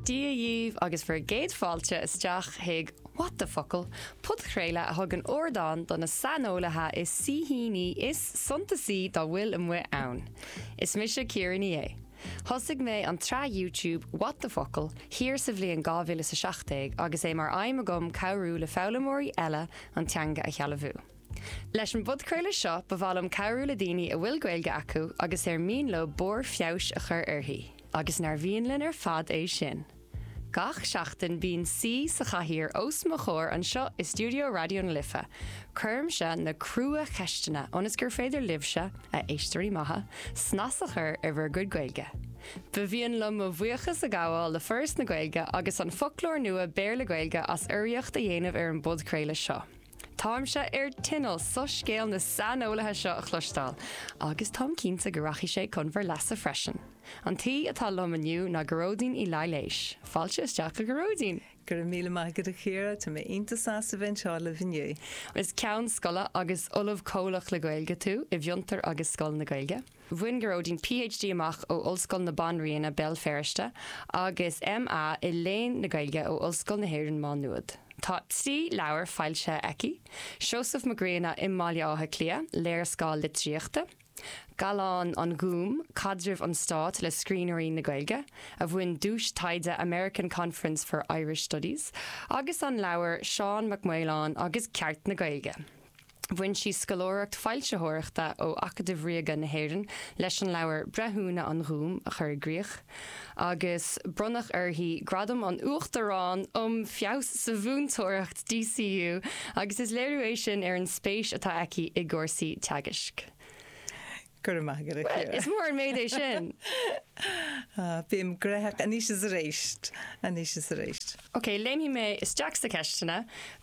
Dia dhíbh agus bhur gcéad fáilte isteach chuig What the Focal! podchraoladh a thugann ardán do na saineolaithe is saoithíní is suntasaí dá bhfuil amuigh ann. Is mise Ciara Ní É. Thosaigh mé an tsraith YouTube What the Focal! thiar sa bhliain 2017 agus é mar aidhm agam cabhrú le foghlaimeoirí eile an teanga a shealbhú. Leis an bpodchraoladh seo ba mhaith liom cabhrú le daoine a bhfuil Gaeilge acu agus ar mian leo barr feabhais a chur uirthi, agus nár mhian linn ar fad é sin! Gach seachtain bíonn saoi sa chathaoir os mo chomhair anseo i stiúideo Raidió na Life. Cuirimse na crua-cheisteanna ionas gur féidir libhse, a éisteoirí maithe, snas a chur ar bhur gcuid Gaeilge. Ba mhian liom mo bhuíochas a ghabháil le Foras na Gaeilge agus An Foclóir Nua Béarla-Gaeilge as urraíocht a dhéanamh ar an bpodchraoladh seo. Táimse ar tinneall soiscéal na saineolaithe seo a chloisteáil, agus táim cinnte go rachaidh sé chun bhur leasa freisin. An t-aoi atá liom inniu ná Gearóidín Uí Laighléis. Fáilte isteach a Ghearóidín! Go raibh míle maith agat a Chiara, tá mé iontach sásta bheith anseo libh inniu. Is Ceann Scoile agus Ollamh Comhlach le Gaeilge tú i bhFiontar agus Scoil na Gaeilge. Bhain Gearóidín PhD amach ó Ollscoil na Banríona, Béal Feirste, agus MA i Léinn na Gaeilge ó Ollscoil na hÉireann Má Nuad. Tá trí leabhar foilsithe aici, Seosamh Mac Grianna i mBaile Átha Cliath, léarscáil litríochta, Gallán an Ghúim, caidreamh an stáit le scríbhneoirí na Gaeilge, a bhain duais taighde American Conference for Irish Studies, agus an leabhar Seán Mac Maoláin agus Ceart na Gaeilge. Bhain sí scoláireacht foilsitheoireachta ó Acadamh Ríoga na hÉireann leis an leabhar Breithiúna an Ghúim a chur i gcrích, agus bronnadh uirthi Gradam an Uachtaráin um Feabhas sa Mhúinteoireacht DCU agus is léiriú é sin ar an spéis atá aici i gcúrsaí teagaisc. Go raibh maith agat a Chiara. Well, is mór an méid é sin. Ah, bím graitheach. Anois is arís. Anois is arís. Ok, léimfidh mé isteach sna ceisteanna.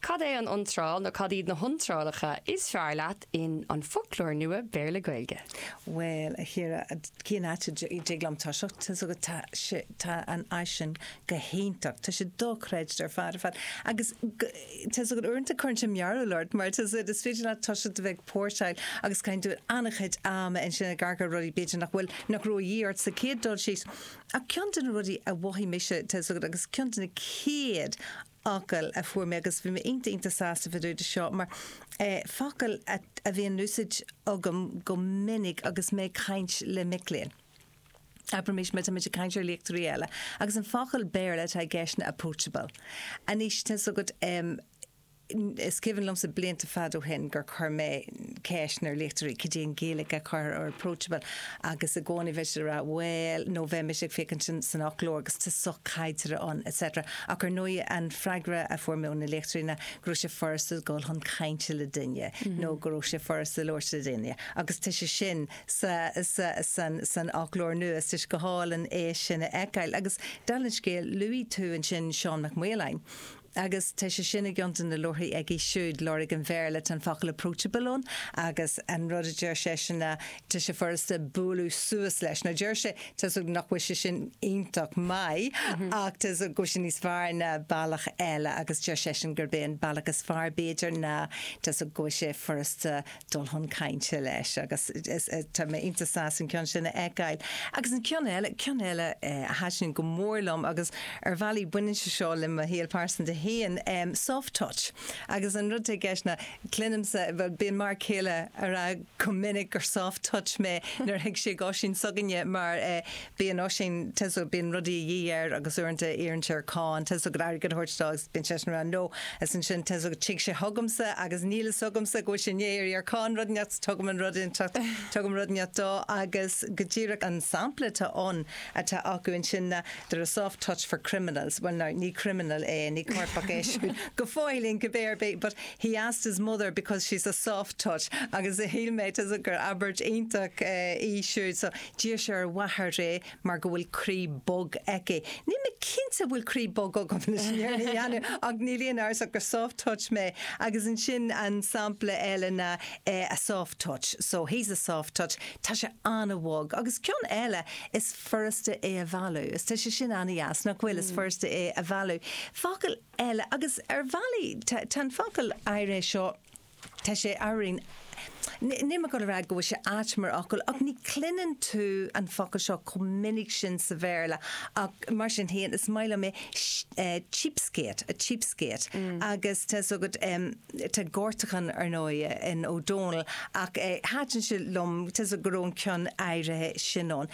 Cad é an iontráil nó cad iad na hiontrálacha is fearr leat in An Foclóir Nua Béarla-Gaeilge? Bhuel, a Chiara, cén áit a dtig liom toiseacht? Tá a fhios agat tá sé, tá an áis sin go hiontach. Tá sé dochreidte ar fad ar fad. Agus go, Tá a fhios agat uaireanta cuireann sé mearbhall ort mar tá a fhios agat is féidir leat toiseacht a bheith ag póirseáil agus caitheann tú an-chuid ama ansin ag amharc ar rudaí b'fhéidir nach bhfuil nach raibh a dhíth ort sa chéad dul síos. Ach ceann de na rudaí a mhothaigh mise tá a fhios agat agus ceann de na chéad fhocail a fuair mé agus bhí mé iontach iontach sásta fá dtaobh de seo mar focail a bhíonn in úsaid agam go minic agus mé ag caint le mic léinn. Abraimis má tá muid ag caint ar léachtóirí eile agus an focal Béarla atá i gceist ná approachable. Anois tá's agat em, is cuimhin liomsa blianta fad ó shin gur chuir mé ceist ar léachtóirí cad é an Ghaeilge a chuirtear ar approachable agus i gcónaí bheadh siad ag rá bhuel nó bheimis ag féachaint san, san fhoclóir agus tá sochaideartha ann etc. Ach ar ndóigh an freagra a fuair mé ó na léachtóirí ná go raibh sé furasta dul chun cainte le duine nó go raibh sé furasta labhairt le duine agus tá sé sin sa, sa, san, san fhoclóir nua. Tá sé go hálainn é sin a fheiceáil. Agus dála an scéil, luaigh tú ansin Seán Mac Maoláin. Agus tá sé sin i gceann de na leabharthaí aige siúd, Lorg an Bhéarla. Tá an focal approachable ann agus an rud a deir seisean ná tá sé furasta bualadh suas leis. Now deir sé, tá's agam nach bhfuil sé sin iontach maith ach tá's agam go bhfuil sé níos fearr ná bealach eile agus deir seisean gurb é an bealach is fearr b'fhéidir ná, tá's agam go bhfuil sé furasta dul chun cainte leis agus tá mé iontach sásta an ceann sin a fheiceáil. Agus an ceann eile, ceann eile a thaitin go mór liom agus ar bhealaí baineann sé seo le mo shaol pearsanta féin, soft touch. Agus an rud atá i gceist ná cluinimse, bhuel bíonn m'fhear céile ag rá go minic gur soft touch mé nuair a thig sé d'Oisín s'againne mar Bíonn Oisín tá's agat bíonn rudaí a dhíth air agus uaireanta iarrann sé ar Con tá's agat airgead a thabhairt dó agus bíonn seisean ann No is ansin tá's agat tig sé chugamsa agus níl fhios agamsa go bhfuil sé i ndiaidh iarraidh ar Con rud inteacht so tugaim an rud inteacht tugaim rud inteacht dó agus go díreach an sampla atá ann atá acu ansin ná They're a soft touch for criminals bhuel ná ní criminal é ní coirpeach é siúd go fóillín cibé ar bith but he asked his mother because she's a soft touch agus shíl mé tá's agat gur abairt iontach eh, í siúd so D'iarr sé ar a mháthair é mar go bhfuil croí bog aici. Níl mé cinnte an bhfuil croí bog agam anois, níor dhéanamh ach níl aon amhras ach gur soft touch mé agus ansin an sampla eile ná eh a soft touch so he's a soft touch tá sé an-bhog agus ceann eile is furasta é a mhealladh is tá sé sin an-deas nach bhfuil is furasta é a mhealladh. Focal eile agus ar bhealaí tá an focal áirithe seo Tá sé araon. Níl mé ag dul a rá go bhfuil sé ait mar fhocal ach ní chluineann tú an focal seo chomh minic sin sa Bhéarla ach mar sin féin is maith liom é, cheapskate, a cheapskate. Agus tá's agat, tá gortachán ar ndóigh in Ó Dónaill ach thaitin sé liom tá's agat go raibh an ceann áirithe sin ann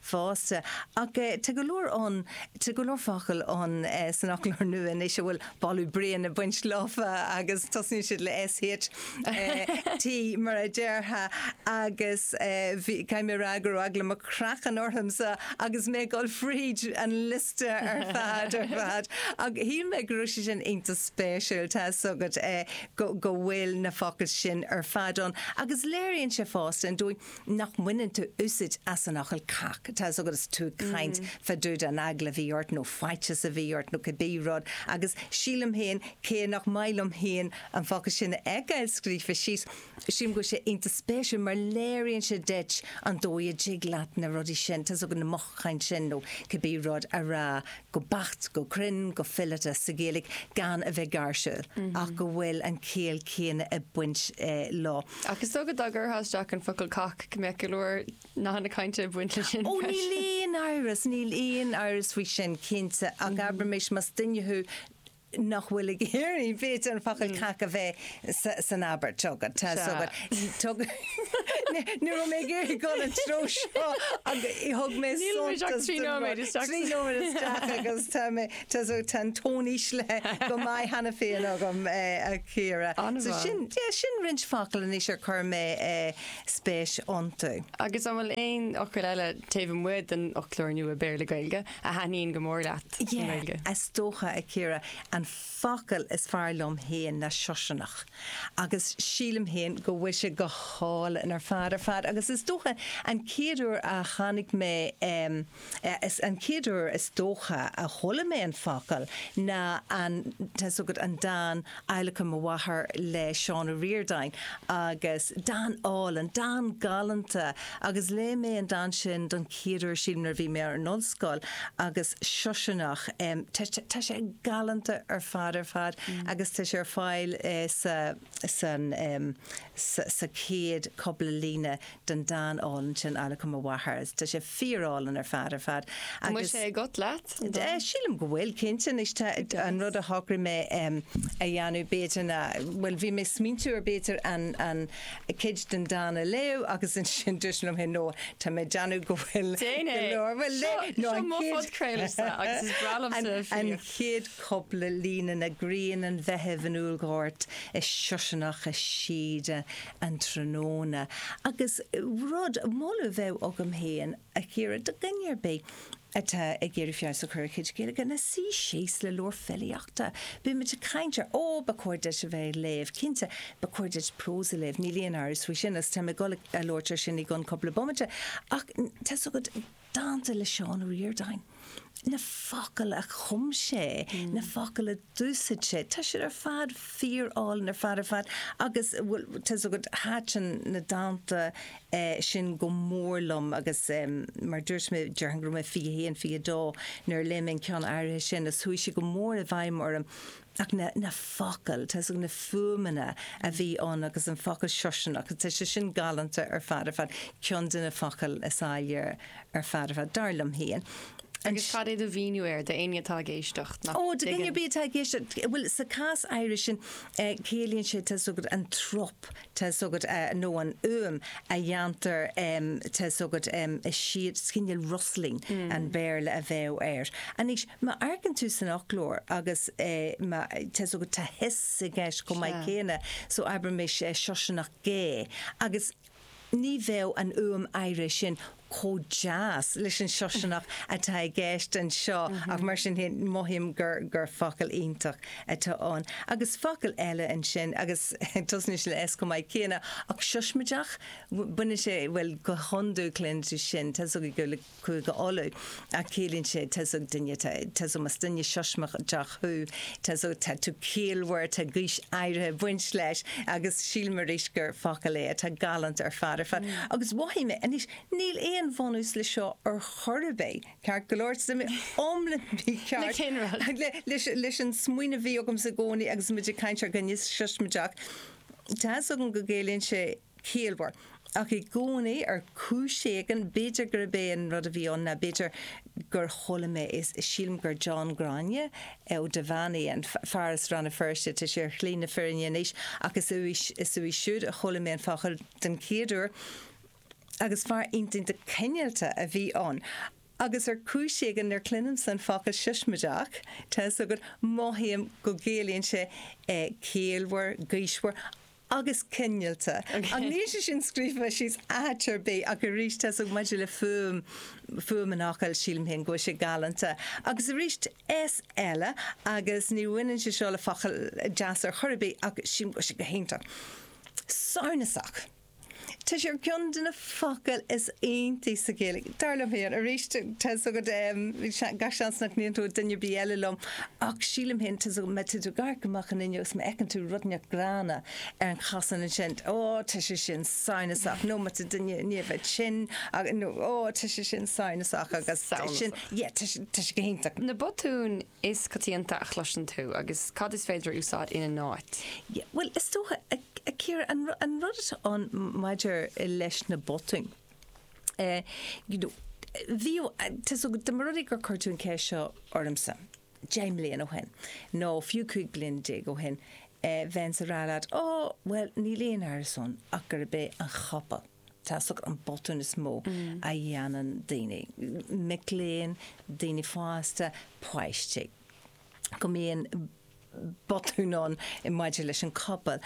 fosta. Ach tá go leor ann, tá go leor focal ann san Fhoclóir Nua anois a bhfuil boladh bréan ag baint leofa agus tosaíonn siad le SH, T mar a déarfá agus bhí, caithfidh mé a rá go raibh eagla mo chraicinn ormsa agus mé ag dul fríd an liosta ar fad, ar fad. Ach shíl mé go raibh sé sin iontach spéisiúil, tá 'fhios agat, go bhfuil na focail sin ar fad ann agus léiríonn sé fosta an dóigh, nach mbaineann tú úsaid as an fhocal cac, tá 'fhios agat is tú ag caint fá dtaobh den eagla a bhí ort nó faitíos a bhí ort nó cibé rud agus sílim féin cé nach maith liom féin an focal sin a fheiceáil scríofa síos, sílim go bhfuil sé iontach spéisiúil mar léiríonn sé duit an dóigh a dtig leat na rudaí sin, tá 'fhios agat na mothúcháin sin nó cibé rud a rá go beacht, go cruinn, go fileata sa Ghaeilge gan a bheith gáirsiúil ach go bhfuil an chiall céanna ag baint leo. Ach is dócha dá gcuirfeá isteach an focal cac go mbeadh go leor nathanna cainte ag baint leis sin freisin. Ó níl aon amhras, níl aon amhras faoi sin cinnte ach abraimis más duine thú nach bhfuil ag iarraidh b'fhéidir an focal cac a bheith san abairt. Tugann. Tá. Tugann. Ní raibh mé ag iarraidh dul an treo seo ach thug mé suntas don rud. Níl muid ach trí nóiméad isteach. Trí nóiméad isteach agus tá mé. Tá's agat tá an tón íslithe go maith cheana féin agam, a Chiara. So sin, yeah, sin roinnt focal anois ar chuir mé spéis iontu. Agus an bhfuil aon fhocail eile taobh amuigh den fhoclóir nua Béarla-Gaeilge a thaitníonn go mór leat i nGaeilge? Yeah, is dócha, a Chiara, an focal is fearr liom féin ná siosarnach agus sílim féin go bhfuil sé go hálainn ar fad ar fad agus is dócha an chéad uair a tháinig mé Is an chéad uair is dócha a chuala mé an focal ná an, tá's agat, an dán Adhlacadh mo Mháthar le Seán Ó Ríordáin agus dán álainn, dán galánta agus léigh mé an dán sin don chéad uair sílim nuair a bhí mé ar an ollscoil agus siosarnach, tá sé galánta ar fad ar fad agus tá sé ar fáil sa. san, sa chéad cupla líne den dán álainn sin Adhlacadh mo Mháthar. Tá sé fíor álainn ar fad ar fad. An bhfuil sé agat, leat, an dán? Sílim go bhfuil, cinnte. Anois tá, an rud a shocraigh mé a dhéanamh b'fhéidir ná, bhuel bhí mé ag smaointiú ar b'fhéidir an, an cuid den dán a léamh agus ansin dúirt mé liom fhéin no, tá mé ag déanamh go bhfuil go leor, bhuel léigh, no an chéad, an chéad cupla líne ná grian an Mheithimh in úllghort is siosarnach i síoda an tráthnóna agus rud, moladh a bheadh agam féin, a Chiara, do dhuine ar bith atá ag iarraidh feabhas a chur ar a chuid Gaeilge ná suí síos le leabhar filíochta. Bíonn muid ag caint ar, ó, ba chóir duit a bheith ag léamh, cinnte, ba chóir duit prós a léamh, níl aon amhras faoi sin agus tá mé ag dul a labhairt air sin i gcionn cupla bomaite ach tá's agat, Dánta le Seán Ó Ríordáin, na focail a chum sé, na focail a d'úsaid sé, tá siad ar fad fíor álainn ar fad ar fad agus bhuel tá's agat thaitin na dánta sin go mór liom agus mar dúirt mé déarfainn go raibh mé 21, 22 nuair a léigh mé an ceann áirithe sin agus chuaigh sé go mór i bhfeidhm orm ach na focail, tá's agat na fuaimeanna a bhí ann agus an focal siosarnach, tá sé sin galánta ar fad ar fad, ceann de na focail is áille ar fad ar fad, dar liom féin. Agus cad é do mhíniú air do éinne atá ag éisteacht nach dtuigeann? Ó, do dhuine ar bith atá ag éisteacht, bhuel sa chás áirithe sin ciallaíonn sé, tá's agat, an trup, tá's agat nó an fhuaim a dhéantar tá's agat sea is cineál rustling an Béarla a bheadh air. Anois, má amharcann tú san fhoclóir agus má tá's agat tá hiss i gceist chomh maith céanna so abraimis siosarnach gé agus ní bheadh an fhuaim áirithe sin chomh deas leis an siosarnach atá i gceist anseo ach mar sin féin mothaím gur focal iontach atá ann. Agus focal eile ansin agus tosnaíonn sé le S chomh maith céanna ach siosmaideach, baineann sé, bhuel go hiondúil, cluintear sin, tá 's agaibh, le Cúige Uladh. a chiallaíonn sé tá's agat duine, tá's agat más duine siosmaideach thú, tá's agat tá tú ciallmhar, tá gaois áirithe ag baint leis agus sílim arís gur focal é atá galánta ar fad ar fad agus mhothaigh mé, anois níl aon bhunús leis seo ar chor ar bith, ceart go leor, tá mé iomlán mícheart leis an smaoineamh a bhí agamsa i gcónaí agus muid ag caint ar dhuine siosmaideach, tá's agat go gciallaíonn sé. ciallmhar. Ach i gcónaí, ar chúis éigin, b'fhéidir gurb é an rud a bhí ann ná b'fhéidir gur chuala mé é, sílim gur John Ghráinne Ó Duibheannaigh, an fear as Rann na Feirste, tá sé ar shlí na fírinne anois, ach is uaidh, is uaidh siúd a chuala mé an focal den chéad uair agus fear iontach cineálta a bhí ann. Agus ar chúis éigin nuair chluinimse an focal siosmaideach, tá 'fhios agat, mothaím go gciallaíonn sé ciallmhar, gaoismhar. Agus cineálta. Ach níl sé sin scríofa síos áit ar bith ach arís tá's agat maidir le fuaim, fuaim an fhocail sílim féin go bhfuil sé galánta. Agus aríst S eile agus ní bhaineann sé seo le focail deasa ar chor ar bith ach sílim go bhfuil sé go hiontach. Samhnasach. Tá sé ar cheann de na focail is iontaí sa Ghaeilge, dar liom féin. Arís, tá's agat, gach seans nach n-aontóidh duine ar bith eile liom, ach sílim féin, tá's agat, má tá tú ag amharc amach an fhuinneog is má fheiceann tú rud inteacht gránna ar an chosán ansin, ó, tá sé sin samhnasach, nó má tá duine i ndiaidh bheith tinn, nó, ó, tá sé sin samhnasach, agus tá sin, yeah, tá sé go hiontach. Na botúin is coitianta a chloiseann tú agus cad is féidir a úsáid ina n-áit? Yeah, bhuel, is dócha, a Chiara, an rud atá ann maidir leis na botúin, eh, you know, bhí, tá's agat, dá mba rud é gur chuir tú an cheist seo ormsa, deich mbliana ó shin, nó fiú cúig bliana déag ó shin, eh, bheinnse ag rá leat, ó, bhuel, níl aon amhras ann ach gurb é an chopail. tá a fhios agat an botún is mó a dhéanann daoine, mic léinn, daoine fásta, páistí. Go mbíonn botún ann maidir leis an copail.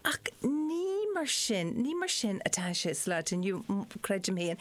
Ach ní mar sin, ní mar sin atá sé sa lá atá inniu, creidim féin.